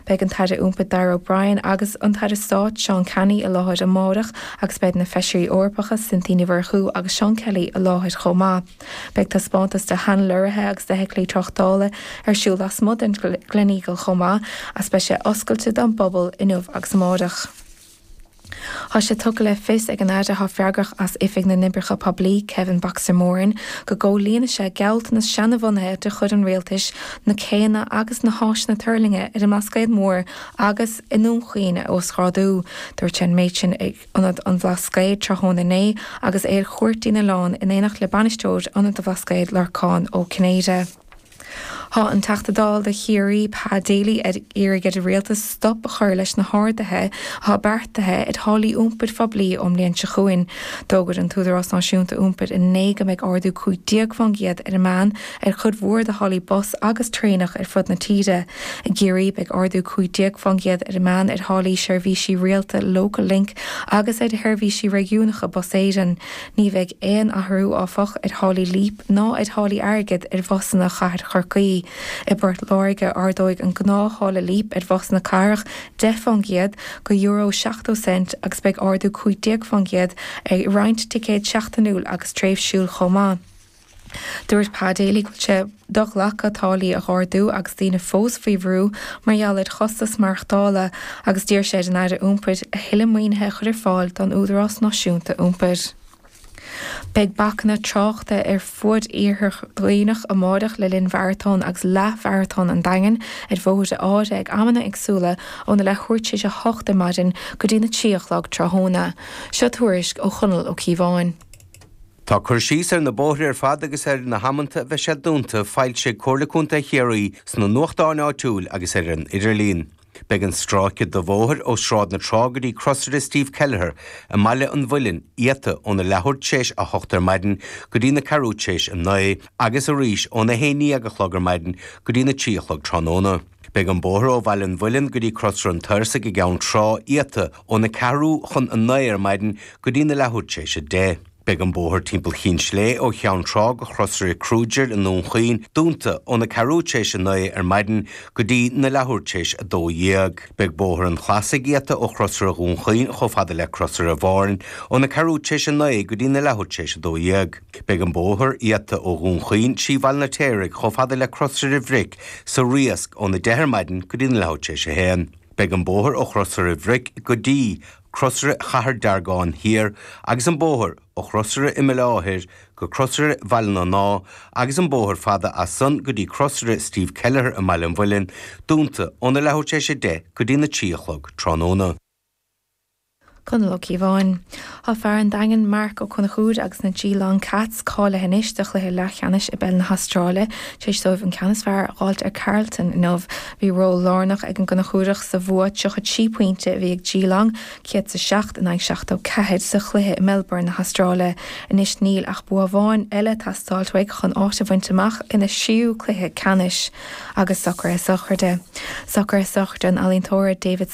Beidh an tAire Iompair Darragh O'Brien agus an tAire Stáit Seán Canney i láthair amáireach agus beidh na Feisirí Eorpacha Cynthia Ní Mhurchú agus Seán Kelly i láthair chomh maith. Beidh taispeántas de shean-lorraithe agus d'fheithiclí tráchtála ar siúl lasmuigh den Gleneagle chomh maith, is beidh sé oscailte don bpobal inniu agus amáireach. Thá sé tugtha le fios ag an Aire athá freagrach as Oifig na nOibreacha Poiblí, Kevin Boxer Moran, go gcomhlíonfaidh sé gealltanas seana-bhunaithe de chuid an Rialtais na céanna agus na háiseanna tuirlinge ar an mBlascaod Mór agus i nDún Chaoin a uasghrádú. Dúirt sé an méid sin ag Ionad an Bhlascaoid tráthnóna inné agus é ar chuairt ar an oileán in éineacht le Bainisteoir Ionad an Bhlascaoid, Lorcán Ó Cinnéide. Thá an Teachta Dála do Chiarraí, Pa Daly, ag iarraidh ar an Rialtas stop a chur leis na harduithe athá beartaithe ar tháillí iompair phoiblí ón mbliain seo chugainn. D'fhógair an tÚdarás Náisiúnta Iompair inné go mbeidh ardú 15% ar an meán ar chuid mhór de tháillí bus agus traenach ar fud na tíre. I gCiarraí, beidh ardú 15% ar an meán ar tháillí seirbhísí rialta Local Link agus ar sheirbhísí réigiúnacha Bus Éireann. Ní bheidh aon athrú, áfach, ar tháillí Leap ná ar tháillí airgid ar bhusanna chathair Chorcaí. I bPort Láirge, ardóidh an gnáth-tháille Leap ar bhusanna cathrach 10 faoin gcéad, go euro 70 cent, agus beidh ardú 15 faoin gcéad ar roinnt ticéad seachtainiúil agus tréimhsiúil chomh maith. Dúirt Pa Daly go bhfuil sé do-ghlactha táillí a ardú agus daoine fós faoi bhrú mar gheall ar chostais maireachtála agus d'iarr sé ar an Aire Iompair a thuilleadh maoinithe a chur ar fáil don Údarás Náisiúnta Iompair. Beidh bacanna tráchta ar fud iarthar Dhuibhneach amáireach le linn Mharatón agus Leath-Mharatón an Daingin ar bhóithre áirithe ag amanna éagsúla óna leathuair tar éis a hocht ar maidin go dtí na trí a chlog tráthnóna. Seo tuairisc ó Chonall Ó Cíobháin. Tá cur síos ar na bóithre ar fad agus ar na hamannta a bheidh siad dúnta foilsithe ag Comhairle Contae Chiarraí sna nuachtáin áitiúil agus ar an idirlíon. Beidh an stráice de bhóthar ó Sráid na Trá go dtí Crosaire Steve Kelliher i mBaile an Mhuilinn iata óna leathuair tréis a hocht ar maidin go dtí na ceathrú tréis a naoi agus arís óna haon déag a chlog ar maidin go dtí na trí a chlog tráthnóna. Beidh an bóthar ó Bhaile an Mhuilinn go dtí Crosaire an Tairsigh i gCeann Trá iata óna ceathrú chun a naoi ar maidin go dtí na leathuair tar éis a deich. Beidh an bóthar timpeall Chinn Slé ó Cheann Trá go Crosaire Kruger i nDún Chaoin dúnta óna ceathrú tar éis a naoi ar maidin go dtí na leathuair tar éis a dó dhéag. Beidh Bóthar an Chlasaigh iata ó Chrosaire Dhún Chaoin chomh fada le Crosaire Bhoirn óna ceathrú tar éis a naoi go dtí na leathuair tar éis a dó dhéag. Beidh an bóthar iata ó Dhún Chaoin trí Bhaile an Fheirtéaraigh chomh fada le Crosaire Bric sa Riasc óna deich ar maidin go dtí na leathuair tar éis a haon. Beidh an bóthar ó Chrosaire Bric go dtí Crosaire Chathair Deargáin thiar agus an bóthar ó Chrosaire Imeallá thoir go Crosaire Bhaile na nÁ agus an bóthar fada as san go dtí Crosaire Steve Kelleher i mBaile an Mhuilinn dúnta óna leathuair tar éis a deich go dtí na trí a chlog tráthnóna. Conall Ó Cíobháin. Tá fear an Daingin, Marc Ó Conchúir agus na Geelong Cats cáilithe anois do chluiche leathcheannais i bpeil na hAstráile. Tar éis dóibh an ceann is fearr a fháilt ar Carlton inniu, bhí ról lárnach ag an gConchúireach sa bhua 33 pointe a bhí ag Geelong, 107 in aghaidh 74, sa chluiche i Melbourne na hAstráile. Anois níl ach bua amháin eile ag teastáilt uaig chun áit a bhaint amach ina thríú cluiche ceannais. Agus socruithe sochraide. Socruithe sochraide an ealaíontóra David.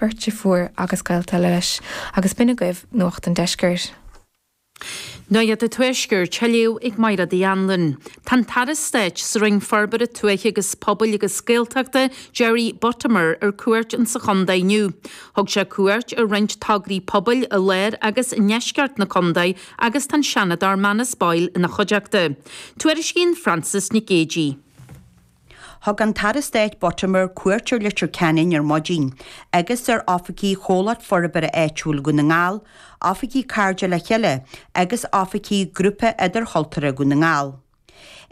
beirt deirféar agus gaolta eile leis, agus b'in agaibh Nuacht an Deiscirt. Nuacht an Tuaiscirt, á léamh ag Máiréad Uí Anluain. Tá an tAire Stáit sa Roinn Forbartha Tuaithe agus Pobail agus Gaeltachta, Jerry Buttimer, ar cuairt insa chontae inniu. Thug sé cuairt ar roinnt tograí pobail i lár agus i ndeisceart na contae agus tá an Seanadóir Manus Boyle ina chuideachta. Tuairiscíonn Frances Nic Géidigh. Thug an tAire Stáit Buttimer cuairt ar Leitir Ceanainn ar maidin, agus ar oifigí Chomhlacht Forbartha Áitiúil Dhún na nGall, oifigí Cairde le Chéile, agus oifigí Grúpa Idirchultúrtha Dhún na nGall.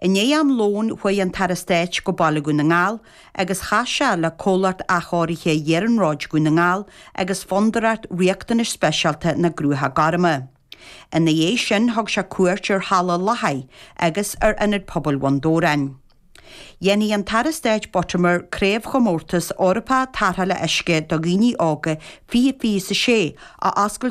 I ndiaidh am lóin, chuaigh an tAire Stáit go Baile Dhún na nGall, agus chas sé le Comhlacht Athchóirithe Iarnróid Dhún na nGall agus Fondúireacht Riachtanais Speisialta na gCruacha Gorma. Ina dhiaidh sin thug sé cuairt ar Halla Lathaigh agus ar Ionad Pobail Bhun Dobhráin. Dhéanfaidh an tAire Stáit Buttimer Craobhchomórtas Eorpach Tarrthála Uisce do Dhaoine Óga 2026 a oscailt go